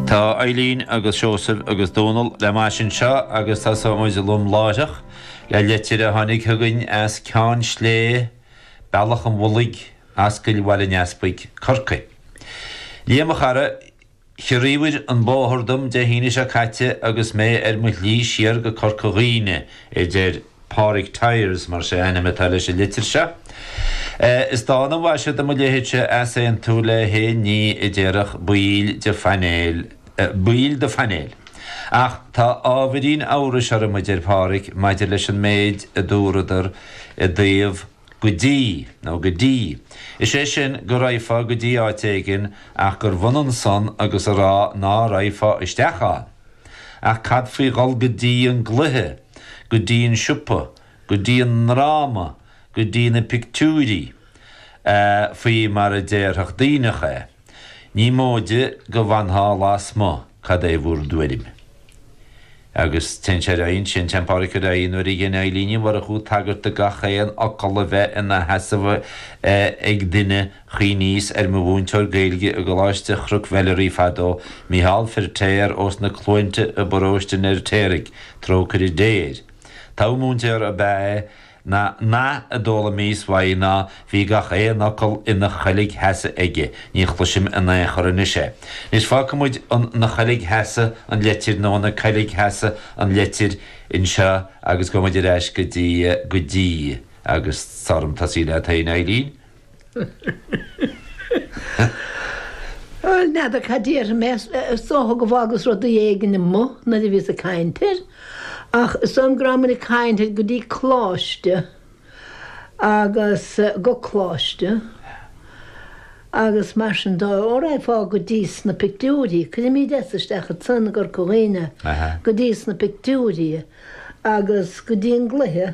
Tá Eileen agus Seosamh agus Dónal le m'ais anseo agus tosóidh muid lom láithreach le leitir a tháinig chugainn as Ceann Slé, Bealach an Mhullaigh, Ascaill Bhaile an Easpaig, Corcaigh. Liam, a chara, chiorraíobhair an bóthar dom Dé hAoine seo caite agus mé ar mo shlí siar go Corca Dhuibhne, a deir. Pádraig Tyers, mar is é a ainm atá leis an litir seo. Is dána an mhaise do mo leithéidse easaontú le haon ní a déarfadh baill do phainéal, baill do phainéil. Ach tá ábhairín amhrais orm, a deir Pádraig, maidir leis an méid a dúradar i dtaobh go dtí, nó go dtí, is é sin go raghfá go dtí áit éigin ach gurbh ionann san agus a rá ná raghfá isteach ann. Ach cad faoi dhul go dtí an gcluiche, go dtí an siopa, go dtí an ndráma, go dtí na pictiúirí, eh, faoi mar a déarfadh Duibhneach é. Ní móide go bhfanfá lasmuigh, cad é bhur dtuairim? Agus téann sé ar aghaidh ansin, téann Pádraic ar aghaidh, nuair a dhein Eilín Ní Mhurchú tagairt do gach aon fhocal a bheith ina sheasamh ag duine, chuimhníos ar mo mhúinteoir Gaeilge i gColáiste Chnoc Mheilearaí fadó, Micheál Firtéar ós na Cluainte i bParóiste an Fheirtéaraigh, trócaire Dé air. Togha múinteoir ab ea é. An nath a d'fhoghlaimíos uaidh ná bhí gach aon fhocal ina choilgsheasamh aige, ní chloisim in aon chor anois é. Anois, fágfaidh muid ina choilgsheasamh an leitir nó ina coilgsheasamh an leitir anseo agus gabhfaidh muid ar ais go dtí, go dtí. agus tá orm tosaí leat féin, Eileen. N'fheadar cad déarfaidh mé. Is dócha go bhfágas rudaí éigin amuigh nuair a bhíos ag caint air. Ach is dóigh liom go rabhamar ag caint air go dtí Coláiste agus go Coláiste agus mar sin dóibh. Ó, raghfá go dtí sna pictiúirí. Cuirimid S. isteach ansan i gCorca Dhuibhne go dtí sna pictiúirí agus go dtí an gcluiche.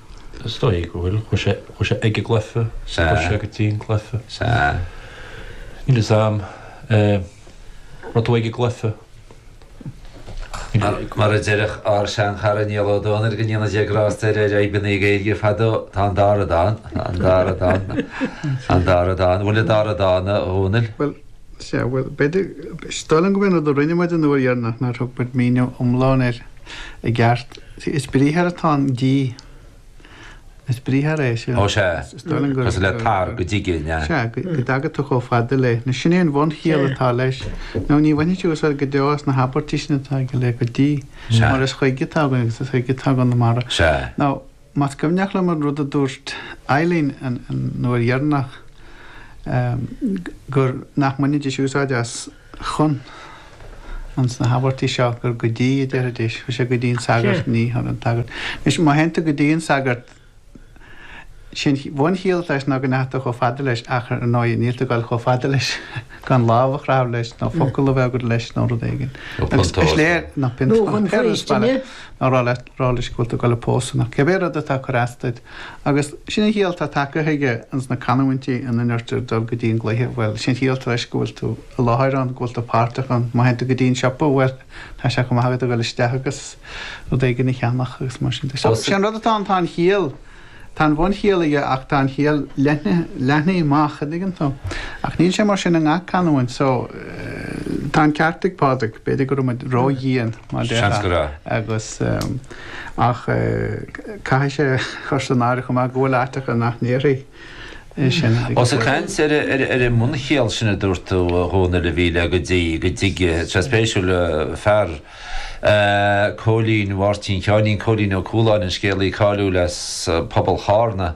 Is dóigh go bhfuil. Chuaigh sé, chuaigh sé ag an gcluife, is chuaigh sé go dtí an gcluife. Sea. Níl 'fhios a'm. Eh, raibh tú ag an gcluife. Mar, mar a déarfadh ár seanchara Niall Ó Dónaill, go ndéana Dia grásta air, ar Fhadhbanna na Gaeilge fadó, tá an dara dóigh ann. An bhfuil an dara dóigh ann, a Dhónaill? Bhuel, sea, bhuel, b'fhéidir, is dóigh liom go b'shin rud a rinne muid an uair dheireanach, nár thug muid míniú iomlán air i gceart. Sea, is briathar atá in 'dtí'. Is briathar é sin. Ó sea, cosúil le tar, go dtigidh, an ea? Sea, go dtaga tú chomh fada le. Nó sin é an bhunchiall atá leis. Nó ní bhainfidh tú úsáid go deo as na habairtí sin atá aige le go dtí. Sea. Mar is chuig atá againn agus is chuig atá i gConamara. Sea. Nó, más cuimhneach liom an rud a dúirt Eibhlín an uair dheireanach, gur, nach mbainfidís úsáid as, chun. ins na habairtí seo gur 'go dtí' a déarfaidís. Chuaigh sé 'go dtí an sagart, ní, chun an tsagairt. Anois, má théann tú go dtí an sagart, sé an bhunchiall atá leis ná go ndeachaigh tú chomh fada leis ach, ar ndóigh, níl tú ag dul chomh fada leis gan lámh a chrathadh leis nó focal a bheith agat leis nó rud éigin. Nó Agus is pionta a ól. léir, nó pionta a ól, Nó chun faoistine. nó rá leis go bhfuil tú ag dul a phósadh nó cibé rud atá ag cur as duit. Agus sin an chiall atá tagtha chuige ins na canamhaintí ina ndeirtear dul go dtí an gcluiche, bhuel, sé an chiall atá leis go bhfuil tú i láthair ann, go bhfuil tú páirteach ann. Má théann tú go dtí an siopa, bhuel, tá sé chomh maith agat a dhul isteach agus rud éigin a cheannach agus mar sin de. So, sé an rud atá ann, tá an chiall, tá an bhunchiall aige ach tá an chiall leathnaithe, leathnaithe amach, a' dtuigeann tú? Ach níl sé mar sin i ngach canamhaint. So, tá an ceart ag Pádraig, b'fhéidir go raibh muid ró-dhian, mar a déarfá, agus. Ach caithfidh sé a chur san áireamh chomh maith go bhfuil áiteacha nach ndéarfaí é sin ag an bhfoireann. Ós ag caint ar an mbunchiall sin a dúirt tú, a Dhónaill, a bhí le go dtí, go dtige. Sea, spéisiúil. Fear, Cóilín Mháirtín Sheáinín Cóilín Ó Cualáin, an scéalaí cáiliúil as pobal Chárna,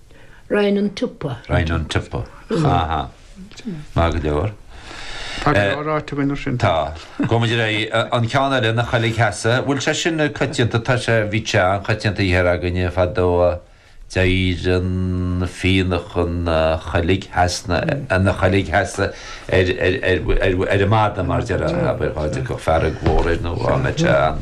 Chun an tsiopa. Chun an tsiopa. Aha. Maith go leor. Tá go leor ráite againn air sin. Tá. Gabhfaidh muid ar aghaidh. An ceann eile, ina choilgsheasamh. Bhfuil sé sin coitianta? Tá sé, bhí sé an-choitianta thiar againne fadó. D'éireodh an fionnadh ina choilgsheasamh, ina choilgsheasamh ar an mada mar déarfá, dá dtiocfadh fearg mhór air nó dhá mbeadh sé ann.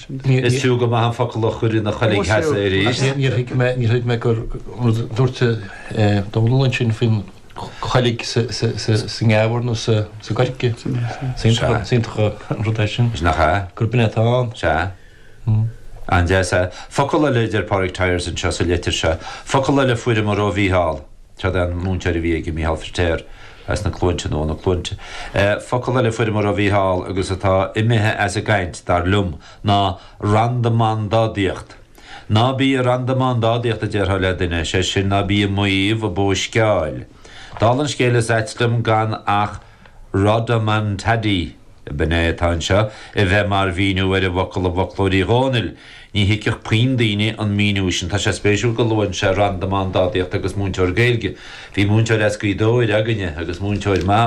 Is fiú go maith an focal a chur ina choilgsheasamh arís. Níor thuig mé gur rud a dúirt Dónall ansin faoin gcolg sa ngeamhar nó sa gcoirce. Is iontach an rud é sin. Is nach ea? Gurb in é atá ann. Sea. An-deas. Focal eile a deir Pádraig Tyers anseo sa leitir seo. Focal eile a fuaireamar ó Mhícheál. Cad é an múinteoir a bhí aige, Mícheál Firtéar as na Cluainte, nó ó na Cluainte? Focal eile a fuaireamar ó Mhícheál agus atá imithe as an gcaint, dar liom, ná randamandádaíocht. Ná bí ag randamandádaíocht, a déarfá le duine, is é sin, ná bí ag maíomh ag bóisceáil. Dála an scéil, is ait liom gan ach. 'Rodomontade', b'in é atá anseo, a bheith mar mhíniú ar an bhfocal i bhfoclóir Uí Dhónaill. Ní thuigfeadh puinn daoine an míniú sin. Tá sé spéisiúil go luann sé 'randamandádaíocht' agus 'múinteoir Gaeilge'. Bhí múinteoir as Gaoth Dobhair againne agus múinteoir.